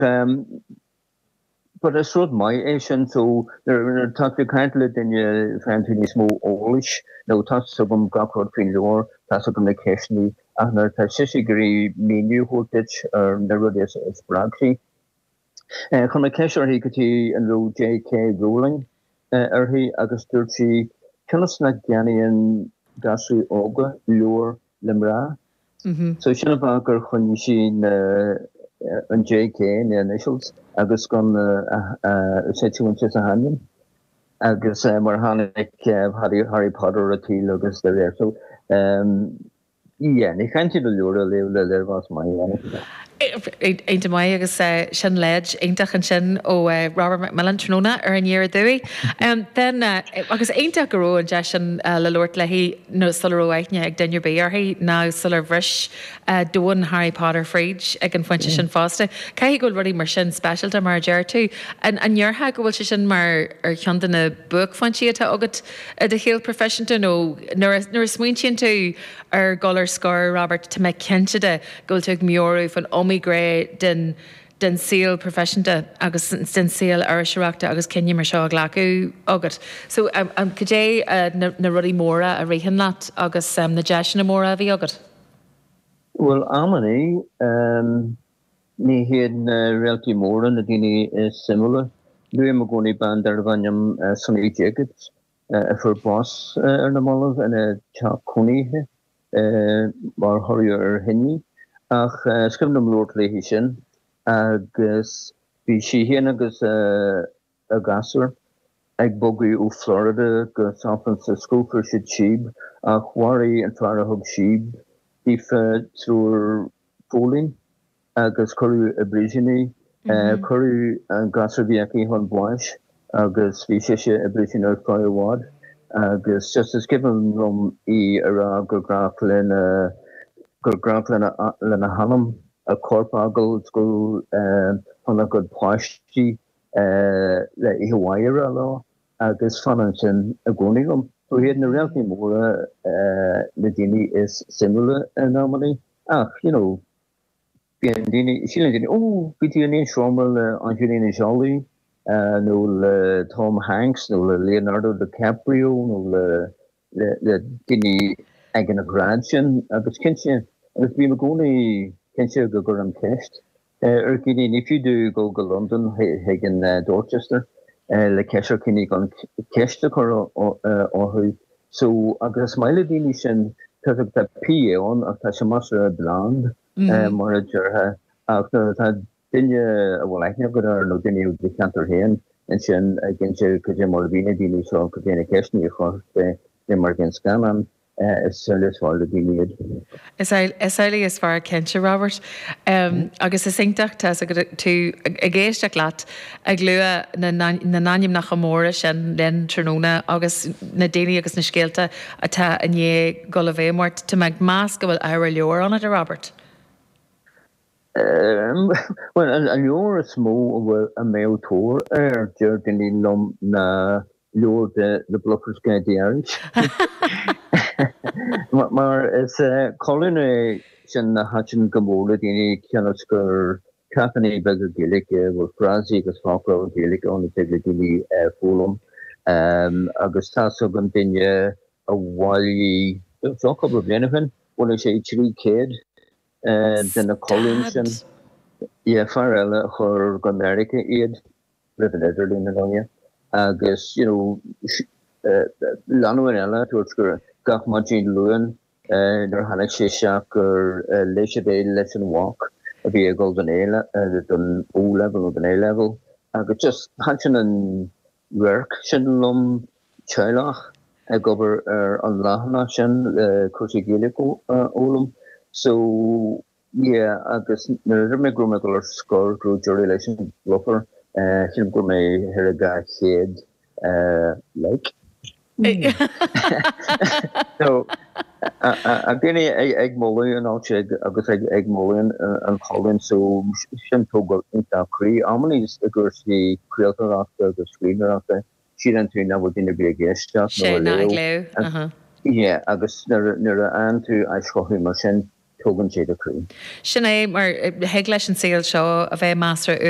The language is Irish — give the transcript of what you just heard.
But is rud maith é sin so nuair atá tú ag caint le duine faigheann tú níos mó eolais nó tá fhios agam gach rud faoin leabhar, tá fhios agam na ceisteanna ach nuair atá sise ag iarraidh míniú a thabhairt duit ar na rudaí a spreag sí. Chuir mé ceist uirthi go díreach an raibh JK Rowling uirthi agus dúirt sí cionn is nach gceannaíonn gasúir óga leabhair, le mná. So sin an fáth gur choinnigh sí na, an JK, na initials agus gan na, sé Joanne sa hainm agus mar tháinig Harry Potter ar an tsaol agus d'éirigh so, yeah, ní chaithfidh tú leabhar a léamh le léirmheas maith. Iontach maith agus sin leid iontach ansin ó Robert McMillen tráthnóna ar Aniar Aduaidh. Bhuel, agus iontach go raibh an deis sin le labhairt léi sula raibh aithne ag duine ar bith uirthi ná sular bhris domhan Harry Potter fríd ag an phointe sin fosta. Caithfidh go bhfuil rudaí mar sin speisialta mar a deir tú. An ndéarfá go bhfuil sé sin mar cheann de na buaicphointí atá agat i do shaol proifisiúnta nó nuair a smaointíonn tú ar dhul ar scor, Robert, tá mé cinnte de, go bhfuil tú ag meabhrú faoin iomaí ghné den saol proifisiúnta agus den saol iriseoireachta agus cinneadh mar seo a ghlacadh agat. So, cad é na rudaí móra a ritheann leat agus na deiseanna móra a bhí agat? Bhuel, amannaí, ní hiad na réaltaí móra na daoine is suimiúla. Luaim i gcónaí bean darbh ainm Sunny Jacobs a fuair bás ar na mallaibh ina teach cónaithe. mar thoradh ar thine ach scríobh mé blúire léi sin agus bhí sí féin agus a grásthóir ag bogadh ó Florida go San Francisco, fuair siad síob ach mharaigh an fear a thug síob daofa triúr póilín. agus cuireadh i bpríosún í. Cuireadh an grásthóir a bhí aici chun báis agus bhí sise i bpríosún ar feadh i bhfad agus just is cuimhin liom í a rá gur grách lena gur grách lena lena hanam a corp a fhágáil le gabháil chun a cuid páistí le oíche mhaith a rá leo agus fanann sin i gcónaí liom. So ní hiad na réaltaí móra na daoine is suimiúla in amannaí ach, you know, Bíonn daoine, síleann daoine, Ó, bhí tú in aon seomra le Angelina Jolie nó le Tom Hanks nó le Leonardo DiCaprio nó le daoine ag an ghrád sin. Agus cinnte, agus bím i gcónaí cinnte go gcuirim ceist ar dhaoine, ní fiú duit dul go Londain chuig an Dorchester le ceist ar dhaoine gan ceist a chur orthu So agus is maith le daoine sin toisc tá PA ann ach tá sé más sort of bland mar a déarfá ach nuair atá duine a bhfuil aithne agat air nó duine ó do cheantar féin ansin i gcinntí cad é mar a bhí na daoine seo cad é na ceisteanna a chuirfeadh sé, cad é mar a bhí an scannán, is amhlaidh is fearr le daoine iad. Is amhlaidh is fearr cinnte, Robert. Agus is iontach tá's agat tú ag éisteacht leat ag lua na n-ainmneacha móra sin linn tráthnóna agus na daoine agus na scéalta atá i ndiaidh dul i bhfeidhm ort. Tá mé ag meas go bhfuil ábhar leabhair ionat, a Robert. Bhuel, an leabhar is mó a mbeadh tóir air, deir daoine liom, ná leabhar de The Bluffer's Guide to Irish mar is colún é sin a thaitin go mór le daoine cionn is gur ceachtanna beaga Gaeilge a bhfuil frásaí agus foclóir Gaeilge ann a dtig le daoine a foghlaim agus tá's agam duine amháin, bhí seo cúpla bliain ó shin bhailigh sé trí céad de na colúin sin. Stad! Fear eile a chuir go Meiriceá iad. roimh an idirlíon in amanna agus you know lánúin eile a dúirt gach maidin Luain nuair a tháinig sé isteach gur léigh siad é leis an mhac a bhí ag dul don don O-level nó don A-level agus just thaitin an radharc sin liom teaghlach ag obair ar an leathanach sin le cúrsaí Gaeilge a fhoghlaim so Ie agus nuair a dúirt mé go raibh mé ag dul ar scor go raibh deireadh leis an Bluffer sílim go raibh thart ar 200 like ag daoine ag moladh an áit agus ag moladh an cholúin so sin tógáil iontach croí. Amanna is i gcúrsaí craoltóireachta agus scríbhneoireachta síleann tú nach bhfuil duine ar bith ag éisteacht nó ag léamh. Yeah, agus nuair a fhaigheann tú aischothú mar sin, tógann sé do chroí. Sin é mar thig leis an saol seo a bheith measartha uainn.